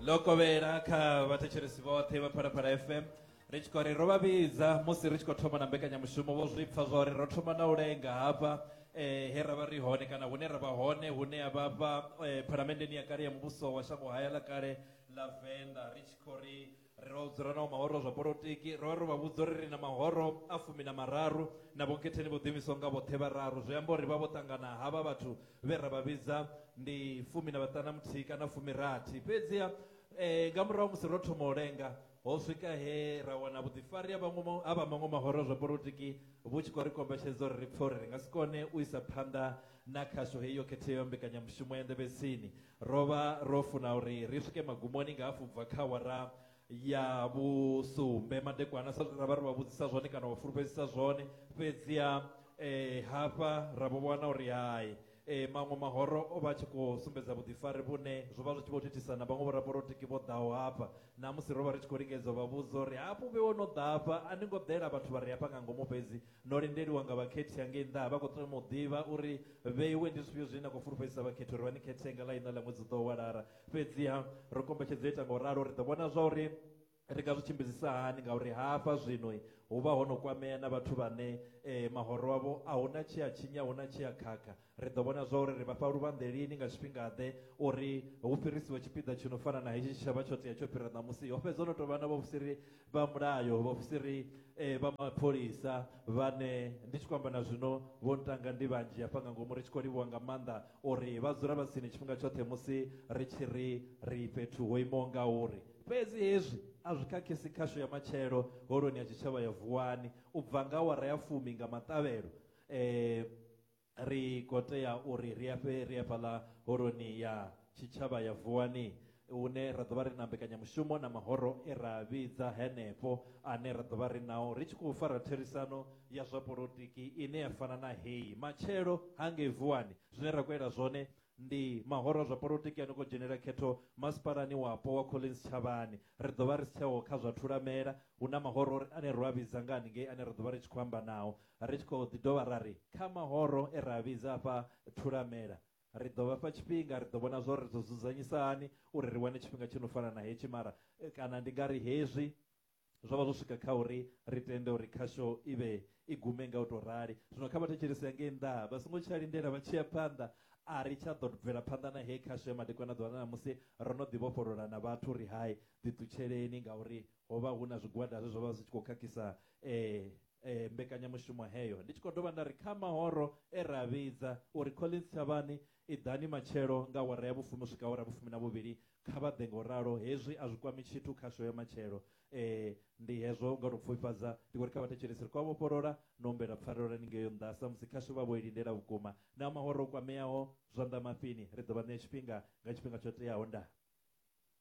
ḽo kovhela kha vhathetshelesi vhoṱhe vha phalaphala fm ri tshi khou ri ro vha vhidza musi ri tshi khou thoma na mbekanyamushumo vho zwi pfa zwa uri ro thoma na u lenga hafha eh, he ra vha ri hone kana hune ra vha hone hune ya vha fha eh, phalamenndeni ya kale ya muvhuso wa shango haya ḽa kale ḽa venḓa ri tshi khou ri Ri vha vhudza uri ri naho mahoro zwa polotiki, ro vha ro vha vhudza uri ri na mahoro a fumi na mararu na vhonkhetheni vho ḓiimisaho nga vhoṱhe vhararu, zwi amba uri ri vha vho ṱangana havha vhathu vhe ra vha vhidza ndi fumi na vhaṱana muthihi kana fumirathi. Fhedziha nga murahu ha musi ro thoma u lenga, ho swika he ra wana vhuḓifari ha vhaṅwe ha vha maṅwe mahoro a zwa polotiki vhu tshi khou ri kombetshedza uri ri pfe uri ri nga si kone u isa phanḓa na khasho heyi yo khetheaho ya mbekanyamushumo ya nḓevhetsini. Ro vha ro funa uri ri swike magumoni nga hafhu bva kha awara ya vhusumbe madekwana sa zwe ra vha ri vha vhudzisa zwone kana vha fulufhedzisa zwone, fhedziha hafha ra vho wana uri hai maṅwe mahoro o vha a tshi khou sumbedza vhuḓifari vhune zwo vha zwi tshi vho thithisa na vhaṅwe vhoraporotiki vho ḓaho hafha. Na musi ro vha ri tshi khou lingedza u vha vhudza uri hafhu vhe wo no ḓa hafha a ni ngo ḓela vhathu vha re hafha nga ngomu fhedzi No lindeliwa nga vhakhethi hangei nnḓa. Vha khou tama u ḓivha uri vheiwe ndi zwifhio zwine na khou fulufhedzisa vhakhethi uri vha ni khethe nga ḽa iṋa ḽa ṅwedzi u ḓaho wa Lara. Fhedziha ro kombetshedzea u ita nga u ralo. Ri ḓo vhona zwauri ri nga zwi tshimbidzisa hani ngauri hafha zwino hu vha ho no kwamea na vhathu vhane mahoro avho a hu na tshe a tshinya, a hu na tshe a khakha. Ri ḓo vhona zwauri ri vha fha luvhanḓe lini nga tshifhinga-ḓe uri hu fhirisiwe tshipiḓa tshi no fana na hetshi tshe tsha vha tsho tea tsho fhira ṋamusi. Ho fhedza ho no tou vha na vhaofisiri vha mulayo, vhaofisiri vha mapholisa, vhane ndi tshi khou amba na zwino vho ntanga ndi vhanzhi hafha nga ngomu, ri tshi khou livhuwa nga maanḓa uri vha dzula vha tsini tshifhinga tshoṱhe musi ri tshi ri ri fhethu ho imaho ngauri. Fhedzi hezwi a zwi khakhisi khasho ya matshelo Holoni ya Tshitshavha ya Vuwani u bva nga awara ya fumi nga maṱavhelo. Ri khou tea uri ri afhe ri hafhaḽa Holoni ya Tshitshavha ya Vuwani hune ra ḓo vha ri na mbekanyamushumo na mahoro e ra a vhidza henefho ane ra ḓo vha ri nao ri tshi khou fara therisano ya zwa polotiki ine ya fana na heyi. Matshelo, hangei Vuwani, zwine ra khou ela zwone ndi mahoro a zwa polotiki a no khou dzhenela khetho masipalani wapo wa Collins Tshavhani. Ri ḓo vha ri si tsheho kha zwa thulamela, hu na mahoro ane ro a vhidza nga haningei ane ra ḓo vha ri tshi khou amba nao. Ri tshi khou ḓi dovha ra ri, kha mahoro e ra a vhidza a fha Thulamela, ri ḓo vha fha tshifhinga, ri ḓo vhona zwa uri ri ḓo dzudzanyisa hani uri ri wane tshifhinga tshi no fana na hetshi. Mara kana ndi nga ri hezwi zwo vha zwo swika kha uri ri tende uri khasho i vhe i gume nga u tou rali. Zwino kha vha thetshelese ya ngei nnḓa-ha, vha songo tsha lindela vha tshi ya phanḓa. A ri tsha ḓo bvela phanḓa na heyi khasho ya madekwana ḓuvha ḽa ṋamusi, ro no ḓi vhofholola na vhathu uri, Hai, ḓiṱutsheleni, ngauri Ho vha hu na zwigwada zwe zwa vha zwi tshi khou khakhisa mbekanyamushumo heyo. Ndi tshi khou dovha nda ri kha mahoro e ra a vhidza uri, Collins Tshavhani, iḓani matshelo nga awara ya vhufumi u swika awara ya vhufumi na vhuvhili, kha vha ḓe nga u ralo. Hezwi a zwi kwami tshithu kha sho ya matshelo. Ndi hezwo nga u tou pfufhifhadza. Ndi khou ri kha vhathetshelesi ri khou a vhofholola na u humbela pfarelo haningei nnḓa samusi khasho vha vho i lindela vhukuma. Na mahoro o kwameaho, zwanḓa mafhini, ri ḓo vha ṋea tshifhinga nga tshifhinga tsho teaho. Ndaa.